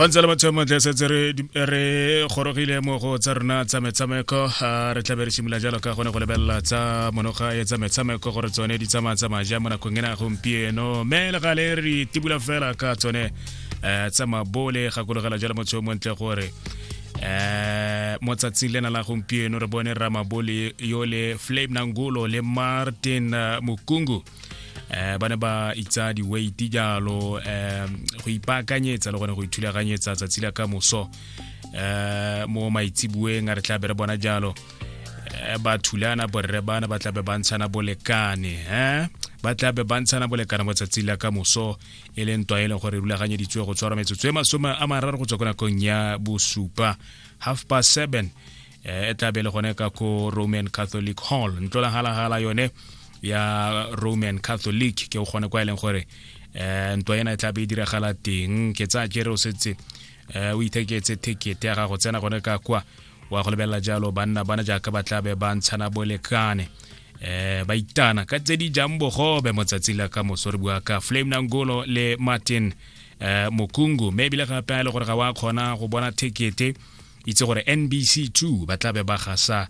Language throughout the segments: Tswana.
go ntse le batho montle setse re gorogile mo go tsa rona tsa metshameko re tlabe re simolola jalo ka gone go lebelela tsa monoga e tsa metshameko gore tsone di tsamaya tsamaya ja mo nakong ena gompieno mme le gale re tibula fela ka tsone um tsa mabole gakologela jalo motho yo montle gore eh mo tsatsing lena la gompieno re bone ramabole yo le flame nangolo le martin mukungu eh ba ne ba itsa di-weight jalo eh go ipaakanyetsa le gone go ithulaganyetsa tsatsi la ka moso eh mo maitseboeng a re tla be re bona jalo eh, ba thulana borre bana ba tlabe ba ntshana bolekane eh ba tlabe ba ntshana bolekane mo tsatsi la ka moso e leng ntwa e leng gore e rulaganyeditswe go tshwara metsotso e masome a mararo go tswa ko nakong ya bosupa half past seven e tla be le gone ka ko roman catholic hall ntlolagalagala yone ya roman catholic ke o kgone kwa e leng gore um ntwa ena e tla be e diragala teng ke tsaya kere o setse um o itheketse ticket ya gago tsena gone ka kwa wa go lebelela jalo banna bana jaaka ba tla be ba ntshana bolekane eh ba itana ka tse di jang bogobe motsatsi la ka moso re bua ka flame nangolo le martin eh mokungu maybe le gape a le gore ga wa kgona go bona ticket itse gore nbc 2 ba tlabe ba gasa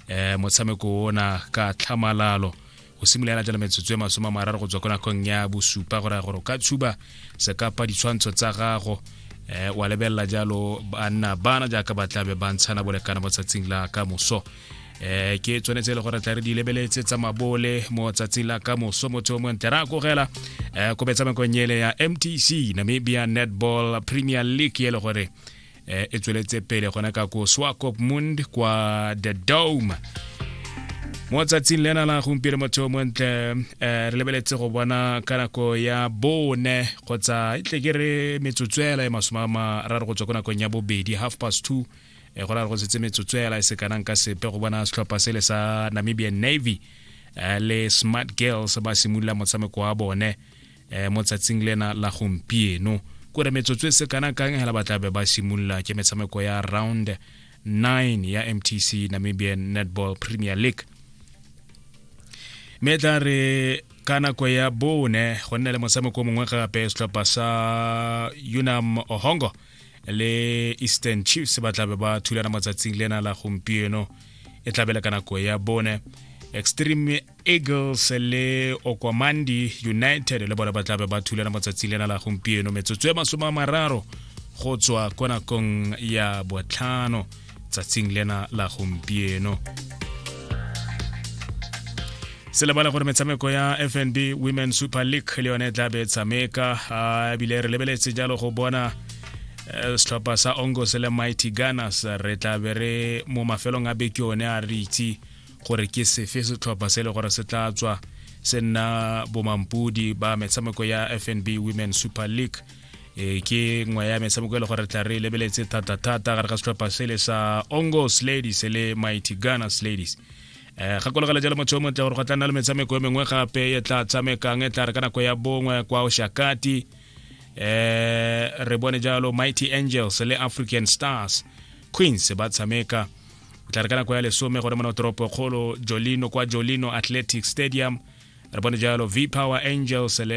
um motshameko ona ka tlhamalalo go simolola jalo metsotso e masome a mararo go tswa ko nakong ya bosupa gore gore o ka tshuba sekapa ditshwantsho tsa gago eh wa lebelela jalo banna bana jaaka ba tlabe ba ntshana bolekana mo tsatsing la ka moso eh ke tshwanetse e le gore tla re di lebeletse tsa mabole mo tsatsing la ka moso motho o montle ra kogela eh ko betsamekong ele ya mtc namibia netball premier league e le gore eh, e tsweletse pele gona ka ko swakopmund kwa the dome mo tsatsing lena la gompieno motho o montle um re lebeletse go bona ka nako ya bone kgotsa e tle ke re metsotswela e masome a mararo go tswa ko nakong ya bobedi half past two e go ra re go setse metsotswela e sekanang ka sepe go bona setlhopha sele sa namibian navy eh, le smart girls ba simolola motshameko wa bone eh, mo tsatsing lena la gompieno kore metsotso e se kana kang hela ba tlabe ba simolola ke metshameko ya round 9 ya mtc namibian netball premier league mme tla re ka nako ya bone go nna le motshameko mongwe gape setlhopha sa unam ohongo le eastern chiefs ba tlabe ba thulana mo tsatsing lena la gompieno e tlabele ka nako ya bone extreme eagles le okwamandi united le bone ba tlabe ba thulana matsatsi lena la gompieno metsotso e masome a mararo go tswa kwa nakong ya botlhano tsatsing lena la gompieno se lebala gore metshameko ya fnb women super league le yone e tlabe e tshameka ebile re lebeletse jalo go bona Eh, setlhopha sa ongos le mighty gunners re tla be re mo mafelong a beke one a re itse gore ke sefe setlhopha se e le gore se tla tswa se nna bomampodi ba metshameko ya fnb women super league e ke nngwe ya metshameko e le gore tla re lebeletse thata-thata gare ga setlhopha sele sa ongos ladies le mighty gunners ladies um gakologela jalo motho o montle gore go tla nna le metshameko e mengwe gape e tla tshamekang e tla re ka nako ya bongwe kwa oshakati um re bone jalo mighty angels le african stars queens ba tshameka o tla re ka nako ya lesome gore mona toropo kgolo jolino kwa jolino athletic stadium re bone jalo v power angels le